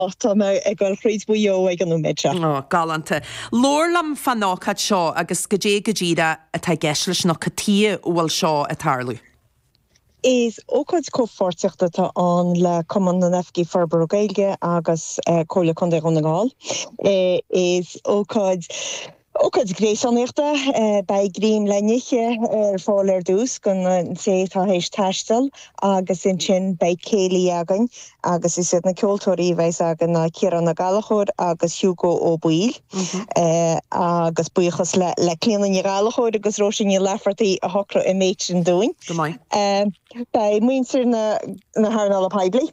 Och, tá mé ag goil thríd Mhaigh Eo ag an nóiméad seo. Ó, galánta. Labhair liom fán ócáid seo agus goidé go díreach atá i gceist leis nó cad chuige a bhfuil seo a' tarlú? Is ócáid comhpháirtíochta atá ann le Cumann na nOifigeach Forbartha Gaeilge agus Comhairle Contae Dhún na nGall. Is ócáid. Ócáid Ghréasánaíochta, Beidh greim le n-ithe ar fáil ar dtús don té atá théis taisteal agus ansin beidh céilí againn agus is iad na ceoltóirí a bheidhs againn ná Ciarán Ó Gallachóir agus Hugo Ó Baoill agus buíochas le Clíona Ní Ghallachóir agus Róise Ní Laifeartaigh a shocraigh an méid sin dúinn. Beidh muintir na hearnála poiblí,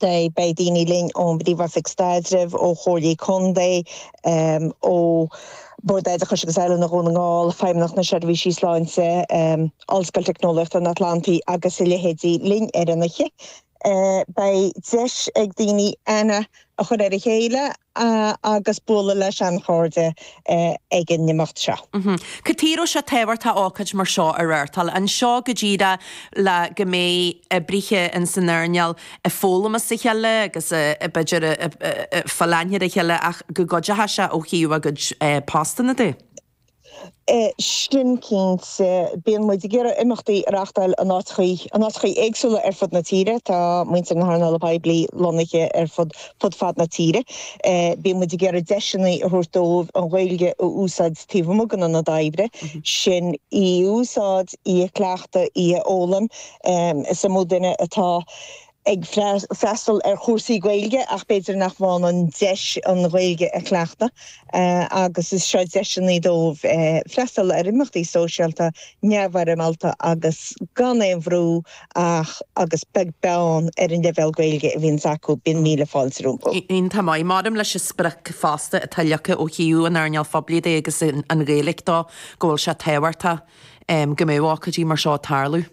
Dé. Beidh daoine linn ón bPríomhoifig Staidrimh, ó Chomhairlí Contae, ó Bhord Oideachais agus Oiliúna Dhún na nGall, Feidhmeannacht na Seirbhísí Sláinte, Ollscoil Teicneolaíochta an Atlantaigh agus a leithéidí linn ar an oíche. Beidh deis ag daoine aithne a chur ar a chéile agus bualadh leis seanchairde ag an n-imeacht seo. Cad chuige a bhfuil sé tábhachtach ócáid mar seo a reáchtáil? Anseo go díreach le go mbeidh oibrithe insan earnáil ag foghlaim óna chéile agus b'fhéidir ag fáil aithne ar a chéile ach go gcuideoidh sé ó thaobh a gcuid postanna de. sin, cinnte, bíonn muid ag iarraidh imeachtaí a reáchtáil in áiteachaí, in áiteachaí éagsúla ar fud na tíre. Tá muintir na hearnála poiblí lonnaithe ar fud, ar fud fad na tíre. Bíonn muid ag iarraidh deiseanna a thabhairt dóibh an Ghaeilge a úsáid taobh amuigh den ionad oibre, sin í a úsáid, í a chleachtadh, í a fhoghlaim. Is iomaí duine atá. ag freastal ar chúrsaí Gaeilge ach b'fhéidir nach mbíonn an deis an Ghaeilge a chleachtadh agus is seo deiseanna dóibh freastal ar imeachtaí sóisialta neamhfhoirmeálta agus gan aon bhrú ach agus beag beann ar an leibhéal Gaeilge a bhíonns acu, bíonn míle fáilte rompu. Iontach maith. Maidir leis an sprioc fosta atá leagtha ó thaobh an earnáil phoiblí de agus an Ghaeilge dó go bhfuil sé tábhachtach go mbeadh ócáidí mar seo ag tarlú.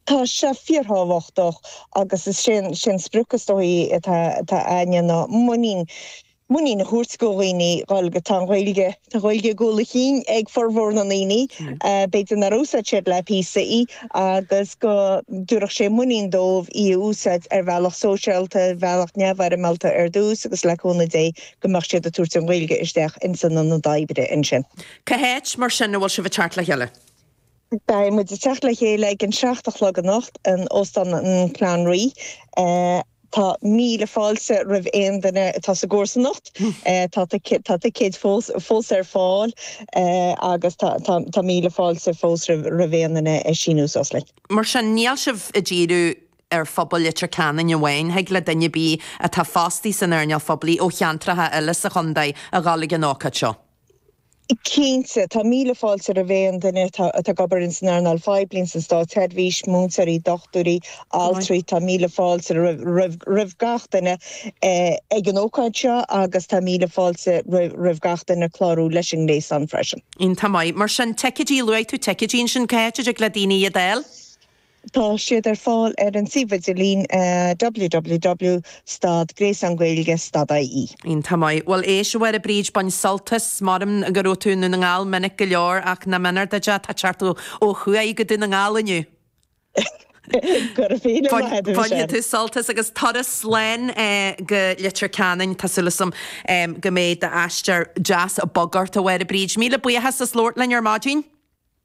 Tá sé fíorthábhachtach, agus is é an sprioc is dóichí atá againne ná muinín, muinín a thabhairt do dhaoine an Ghaeilge. Tá an Ghaeilge, tá Gaeilge i gcúl a chinn ag formhór na ndaoine, b'fhéidir nár úsáid siad le píosa í, agus go dtabharfadh sé muinín dóibh í a úsáid ar bhealach sóisialta, ar bhealach neamhfhoirmeálta ar dtús agus le cúnamh Dé go mbeadh siad ag tabhairt an Ghaeilge isteach ins an ionad oibre ansin. Cá háit, mar sin, a bhfuil sibh ag teacht le chéile? Beidh muid ag teacht le chéile ag an seacht a chlog anocht in Óstán an Clanree. Tá míle fáilte roimh aon duine atá sa gcomharsanacht. Tá tá ticéid fós ar fáil agus tá míle fáilte fós roimh aon duine ag síniú suas linn. Mar sin, níl sibh ag díriú ar phobal Leitir Ceanainn amháin, thig le duine ar bith atá fostaí san earnáil phoiblí ó cheantracha eile sa chontae a dhul ag an ócáid seo. Cinnte, tá míle fáilte roimh aon duine atá ag obair ins an earnáil phoiblí, ins an státsheirbhís, múinteoirí, dochtúirí, altraí, tá míle fáilte roimh gach duine ag an ócáid seo agus tá míle fáilte roimh gach duine clárú leis an ngréasán freisin. Tá maith. Mar sin, ticeidí, luaigh tú ticeidí ansin, cá háit a dtig le daoine iad fháil. Tá siad ar fáil ar an suíomh idirlín www stad Gréasán Gaeilge stad IE. Iontach maith. Bhuel, éist, a Mháire Bríd, bain sult as. Measaim go raibh tú i nDún na nGall minic go leor, ach nach méanar duit é, tá tú ag teacht ó thuaidh go Dún na nGall inniu. Bainfidh tú sult as, agus turas slán go Leitir Ceanainn. Tá súil agam go mbeidh d'aistear deas bog ort, a Mháire Bríd. Míle buíochas as labhairt linn ar maidin.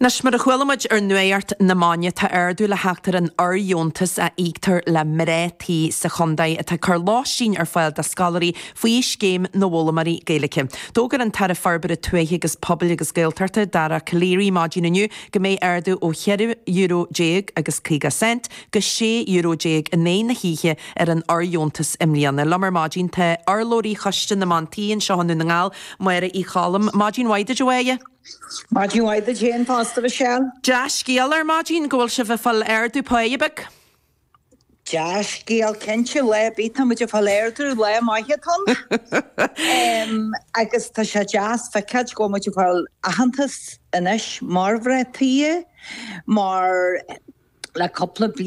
Anois, mar a chuala muid ar Nuacht na Maidine, tá ardú le theacht ar an fhordheontas a íoctar le mná tí sa chontae atá ag cur lóistín ar fáil do scoláirí faoi Scéim na bhFoghlaimeoirí Gaeilge. D'fhógair an tAire Forbartha Tuaithe agus Pobail agus Gaeltachta, Dara Calleary, maidin inniu go mbeidh ardú ó €4 déag agus 50 cent go €16 in aghaidh na hoíche ar an fhordheontas i mbliana. Liom ar maidin tá urlabhraí Choiste na mBan Tí anseo i nDún na nGall, Máire Uí Choilm. Maidin mhaith duit, a Mháire. Maidin mhaith duit fhéin fosta, Michelle. Dea-scéal ar maidin go bhfuil sibh ag fáil ardú páighe. Dea-scéal cinnte, lá ar bith tá muid ag fáil ardú, lá maith atá ann agus tá sé deas a fheiceáilt go bhfuil muid ag fáil aitheantas anois mar mhná tí mar le cúpla bliain,